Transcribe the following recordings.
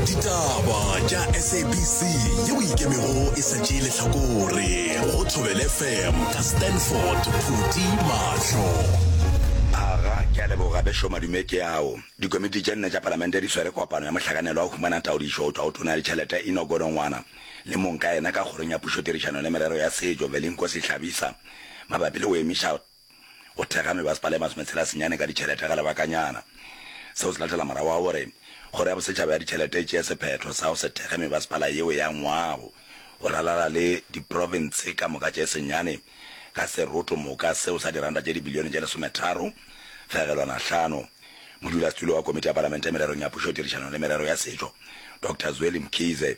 ditaba tša sabc yeo ikemego e sa tšee lehlakore go thobel fm ka stanford phuti mahlo aga ke a leboga bešo madume ke ao dikomiti tše nne tša palamente di swere kopano ya mohlakanelo wa humana taodišo go tšwa go tona ya ditšhelete ino godongwana le mong ka yena ka kgorong ya pušotirišano le merero ya setšo velinkosi hlabisa mabapi le go emiša go thekga mebasepala e masometshelasenyane ka ditšhelete ga lebakanyana. Seo se latela morago ga gore Kgoro ya Bosetšhaba ya Ditšhelete e tšee sephetho sa go se thekge mebasepala yeo ya ngwago go ralala le diprofense ka moka tše senyane ka seroto moka seo sa diranta tše dibilione tše lesometharo fegelwana hlano. Modulasetulo wa Komiti ya Palamente mererong ya Pušotirišano le Merero ya Setšo, Doctor Zweli Mkhize,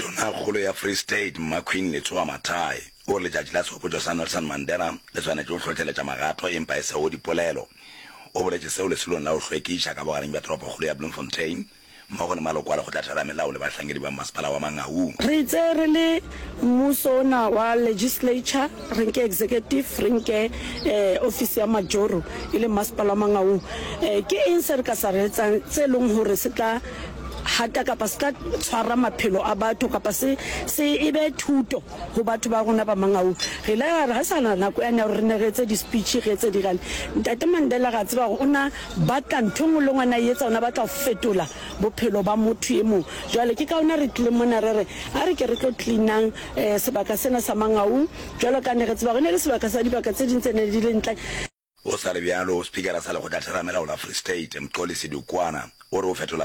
Tonakgolo ya Free State Mmaqueen Letsoa Mathae o re letšatši la tshopotšo sa Nelson Mandela le swanetše go hlohleletša magato e mpa e sego dipolelo. O boletše seo leselong la go hlwekiša ka bogareng bja toropokgolo ya Bloemfontein mmogo le maloko a Lekgotla Theramelao le bahlankedi ba mmasepala wa Mangaung. Re itse re le mmuso ona wa Legislature, re nke Executive, re nke ofisi ya Majoro e leng Mmasepala wa Mangaung. Ke eng se re ka sa re etsang tse leng hore se tla. hata kapa se tla tshwara maphelo a batho kapa se se e be thuto go batho ba rona ba mangau re ile ra re ga sana nako yane ya gore re ne re etse di-speech re etse dirane ntate mandela ra tseba gore o na batla ntho e nngwe le ngwana e etsa ona batla go fetola bophelo ba motho e mongwe jwale ke ka ona re tlileng mona re re a re ke re tlo cleanang um sebaka sena sa mangaung jwalo ka ne re tseba gore ne le sebaka sa dibaka tse ding tse ne di le ntle Go sa le bjalo, Spikara sa Lekgotlatherama la Ola Free State, Mxolisi Dukwana, o re go fetola